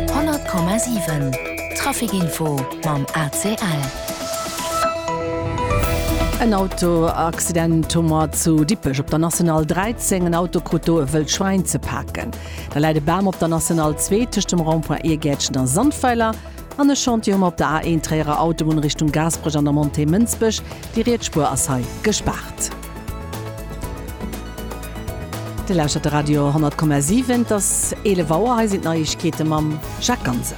100,7 Traficinfo mam ACL. En Autoaccident hu mer zu Dippech op der National 13. En Auto krut do e wëllt Schwäin ze paken. Da läit e Bam op der National 2 tëscht dem Rond-point Iergäertchen a Sandweiler. An e Chantier hu mer op der A1 Tréierer Autobunn Richtung Gaasperech an der Montée Mënsbech. Déi riets Spuer ass hei gespaart. Dir lauschtert de Radio 10,7. Et ass 11 Auer. Hei sinn d'Neiegkeete mam Jacques Ganser.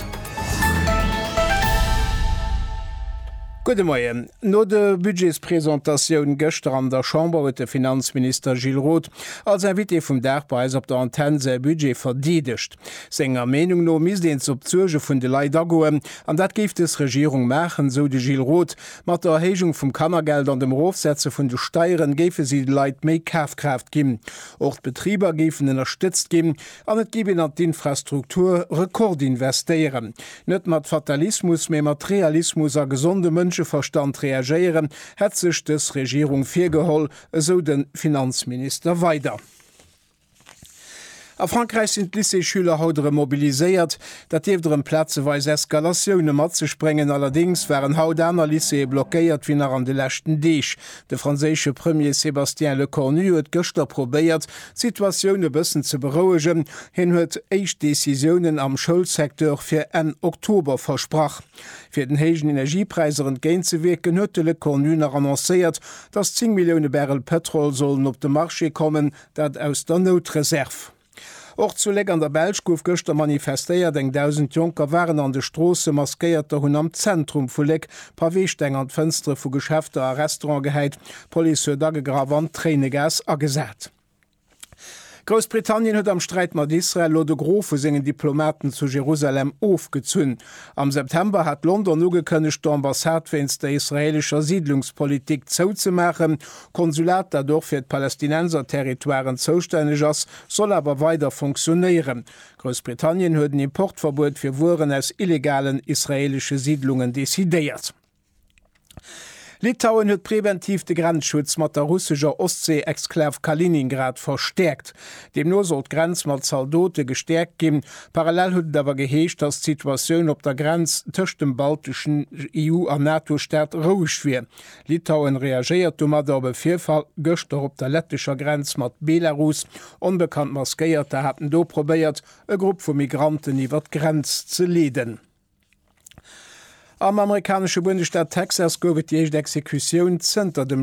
Gudde Moien. No der Budgetspresentatioun gëschter an der Chamber huet de Finanzminister Gilles Roth als Invité vum Dag bei eis op der Antenn säi Budget verdeedegt. Senger Meenung no misst een op d'Suerge vun de Leit agoen. An dat géif des Regierung maachen, sou de Gilles Roth Mat der Erhéijung vum Kannergeld an dem Erofsetze vun de Steieren géife si de Leit méi Kafkraaft ginn. Och d'Betriber géifen ënnerstëtzt ginn an et géif een an d'Infrastruktur rekordinvestéieren. Net mat Fatalismus, mee mat Realismus a gesonde Mënscheverstand reagéieren, hätt sech dës Regierung virgeholl, esou de Finanzminister weider. A Frankräich sinn d'Lycéesschüler haut erëm mobiliséiert. Dat dierft erëm plazeweis Eskalatioune mat sech bréngen. Allerdéngs waren haut aner Lycéeë blockéiert wéi nach an de leschten Deeg. De franséische Premier Sébastien Lecornu huet gëschter probéiert, d'Situatioun e bëssen ze berouegen. Hien huet éischt Decisiounen am Schoulsecteur fir Enn Oktober versprach. Fir den héijen Energiepräisser entgéint ze wierken, huet de Lecornu nach annoncéiert, datt 10 Millioune Barrel Pëtrol sollen op de Marché kommen, Dat aus der Noutreserv. Och zu Léck an der Belsch gouf gëschter manifestéiert. Eng Dausend Jonker waren an de Stroossen. Maskéierter hunn am Zentrum vu Léck Paweesteng an d'Fënstere vu Geschäfter a Restaurante gehäit. D'Police huet agegraff an Tréinegas agesat. Groussbritannien huet am Sträit mat Israel elo de Gros vu sengen Diplomaten zu Jerusalem ofgezunn. Am September hat London ugekënnegt, d'Ambassade wéinst der israeelescher Siidlungspolitik zouzemaachen. Konsulat, dat och fir d'Palästinenserterritoiren zoustänneg ass, soll awer weider funktionéieren. Groussbritannien huet en Importverbuet fir Wueren aus illegalen israeelesche Siidlungen decidéiert. Litauen huet preventiv de Grenzschutz mat der russescher Ostsee-Exklav Kaliningrad verstäerkt. Deemno soll d'Grenz mat Zaldote gestäerkt ginn. Parallel huet et awer geheescht, datt d'Situatioun op der Grenz tëscht dem balteschen EU a NATO-Staat roueg wier. Litauen reagéiert domadder op e Virfall gëschter op der lettescher Grenz mat Belarus. Onbekannt Maskéierter haten do probéiert, e Grupp vu Migranten iwwer d'Grenz ze leeden. Am amerikanesche Bundesstaat Texas gouf et déi éischt Exekutioun zënter dem.